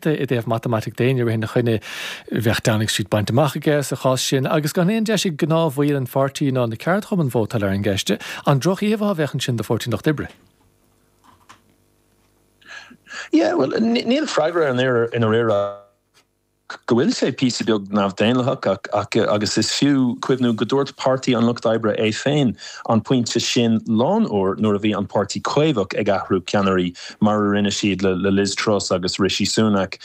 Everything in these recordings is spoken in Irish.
i dtaobh matamaitic d'éinne rith ina choinne, bheadh Downing Street bainte amach aige sa chás sin, agus gan aon deis ag gnáthbhaill an pháirtí ná na ceardchumann vótáil ar an gceist. An droch-íomhá a bheadh ansin do Pháirtí an Lucht Oibre? Yeah, well, níl freagra air i ndáiríre ach go bhfuil sé píosa beag neamhdhaonlathach agus is fiú cuimhniú go dúirt Páirtí an Lucht Oibre é féin an pointe sin lán uair nuair a bhí an Páirtí Caomhach ag athrú ceannairí mar a rinne siad le Liz Truss agus Rishi Sunak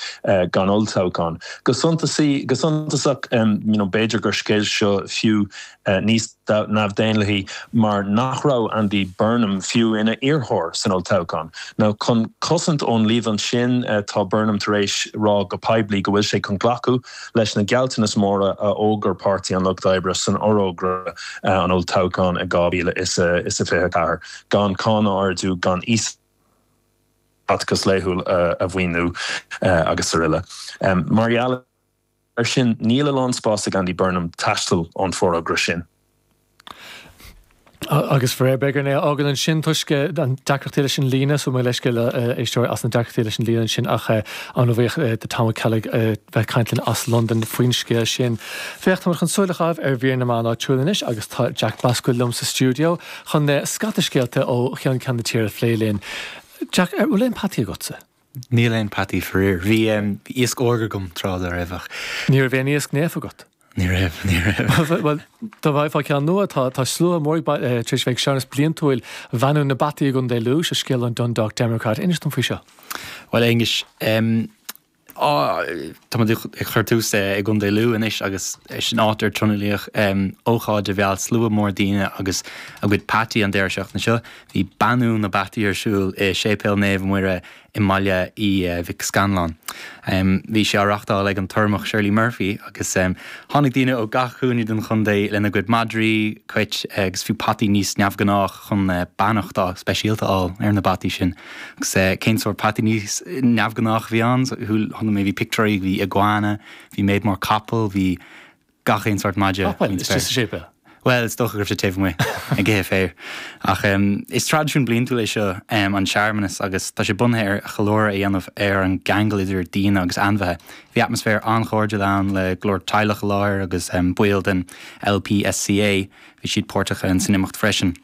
gan olltoghchán. Go suntasaí, go suntasach, b'fhéidir gur scéal seo fiú níos neamhdhaonlathaí mar nach raibh Andy Burnham fiú ina iarrthóir san olltoghchán. Now, chun cosaint ón líomhain sin, tá Burnham tar éis rá go poiblí go bhfuil sé chun glacadh leis na gealltanais mhóra a fhógair Páirtí an Lucht Oibre san fhorógra an olltoghcháin in 2024. gan cáin a ardú, gan iasacht costas laethúil a mhaoiniú agus araile. Mar gheall air sin, níl a lán spáis ag Andy Burnham taisteal ón bhforógra sin. Agus faraor, beidh orainn é a fhágáil ansin toisc an deacrachtaí leis an líne, so mo leithscéal le éisteoirí as na deacrachtaí leis an líne ansin ach an-bhuíoch de Tom Ó Ceallaigh bheith caint linn as Londain faoin scéal sin. Féach, táimid chun súil a chaitheamh ar mhír na meán áitiúil anois agus tá Jack Basquille liom sa stiúideo. chun scata scéalta ó cheann ceann na tíre a phlé linn. Jack, an bhfuil aon peataí agatsa? Níl aon peataí, faraor. Bhí iasc órga agam tráth dá raibh ach. Ní raibh aon iasc naofa agat? Ní raibh, ní raibh. Bhuel, dá bhfaighfeá ceann nua, tá slua mór tar éis bheith ag searmanas bliantúil bheannú na bpeataí i gContae Lú, seo scéal ón Dundalk Democrat. Inis dom faoi seo. Bhuel, a Aonghuis, Táimid ag cur tús i gContae Lú anois agus sin áit ar tionóladh ócáid a mheall slua mór daoine agus a gcuid peataí an deireadh seachtaine seo. Bhí beannú na bpeataí ar siúl i Séipéal Naomh Muire i mBaile Uí Mhic Scanláin. Bhí sé á reáchtáil ag an tUrramach Shirley Murphy agus tháinig daoine ó gach cúinne den chontae lena gcuid madraí, cuit agus fiú peataí níos neamhghnách. chun beannacht speisialta a fháil ar na peataí sin. Agus cén sórt peataí níos neamhghnách a bhí ann? Chuala mé, bhí pictiúirí, bhí iguana, bhí méid mór capall, bhí gach aon sórt madra faoin spéir. Istigh sa séipéal? Bhuel, is dócha go raibh sé taobh amuigh ag ithe féir. Ach is traidisiún bliantúil é seo an searmanas agus tá sé bunaithe ar cheiliúradh a dhéanamh ar an gceangal idir daoine agus ainmhithe. Bhí atmaisféar an-chairdiúil ann le go leor teaghlach i láthair agus baill den LPSCA Bhí siad páirteach san imeacht freisin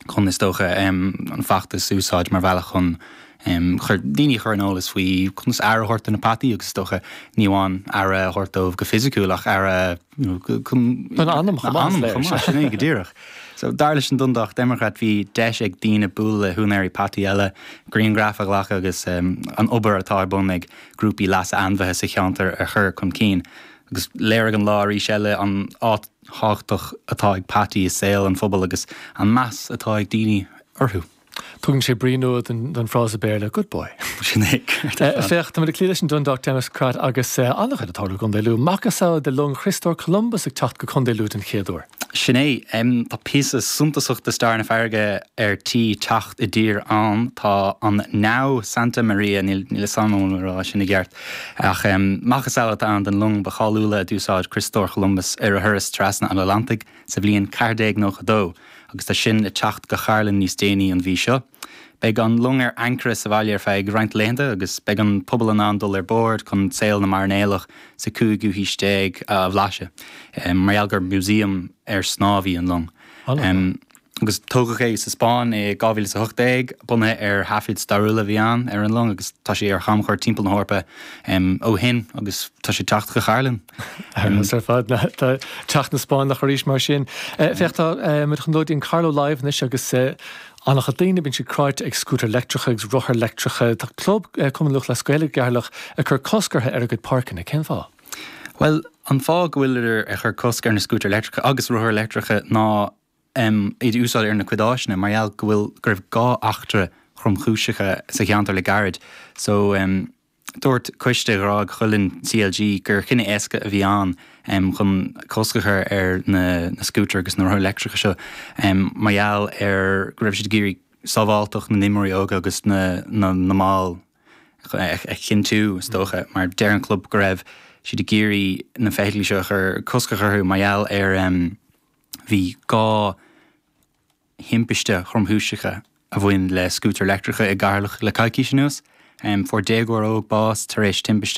chun, is dócha, an feachtas a úsáid mar bhealach chun daoine a chur ar an eolas faoi conas aire a thabhairt do na peataí agus, is dócha, ní amháin aire a thabhairt dóibh go fisiciúil ach aire a Don anam chomh maith. Anam chomh maith, sin é go díreach. So, dar leis an Dundalk Democrat, bhí deis ag daoine bualadh le húinéirí peataí eile, grianghraif a ghlacadh agus an obair atá ar bun ag grúpaí leasa ainmhithe sa cheantar a chur chun cinn. Agus léirigh an lá arís eile an áit, thábhachtach atá ag peataí i saol an phobail agus an meas atá ag daoine orthu. Tugann sé brí nua don frása Béarla good boy. Sin é, ceart ar fad. Féach, tá muid ag cloí leis an Dundalk Democrat agus an-chuid ag tarlú i gContae Lú. Macasamhail de long Chriostóir Columbus ag teacht go Contae Lú den chéad uair. Sin é. Tá píosa suntasach de stair na farraige ar tí teacht i dtír ann. Tá an 'Nao Santa Maria', níl a fhios agam an bhfuil mé ag rá sin i gceart, Ach macasamhail atá ann den long ba cháiliúla a d'úsáid Criostóir Columbus ar a thuras trasna an Atlantaigh sa bhliain 1492, agus tá sin le teacht go Cairlinn níos déanaí an mhí seo. Beidh an long ar ancaire sa bhaile ar feadh roinnt laethanta agus beidh an pobal in ann dul ar bord chun saol na mairnéalach sa chúigiú haois déag a bhlaiseadh, mar gheall gur músaem ar snámh í an long. agus tógadh é sa Spáinn i 2018, bunaithe ar thaifid stairiúla a bhí ann ar an long agus tá sé ar chamchuairt timpeall na hEorpa ó shin agus tá sé ag teacht go Cairlinn. Ar fheabhas ar fad, tá teacht na Spáinneach arís mar sin. Féach, tá muid chun dul go dtí Carlow Live anois agus an-chuid daoine, bíonn siad cráite ag scútair leictreacha agus rothair leictreacha. Tá club Cumann Lúthchleas Gael Cheatharlach ag cur cosc orthu ar a gcuid páirceanna. Cén fáth? Bhuel, an fáth go bhfuiltear ag cur cosc ar na scútair leictreacha agus rothair leictreacha ná um iad a úsáid ar a gcuid áiseanna mar gheall go bhfuil go raibh dhá eachtra thromchúiseacha sa cheantar le gairid so. um Dúirt coiste Ghráig Chuilinn CLG gur cinneadh éasca a bhí ann um chun cosc a chur ar na na scútair agus na rothair leictreacha seo um mar gheall ar go raibh siad ag iarraidh sábháilteacht na n-imreoirí óga agus na na mball a chinntiú. Is dócha mar deir an club go raibh siad ag iarraidh na feithiclí seo a chur cosc a chur orthu mar gheall ar um Bhí dhá thimpiste thromchúiseacha a bhain le scútair leictreacha i gCeatharlach le coicís anuas. Fuair déagóir óg bás tar éis timpiste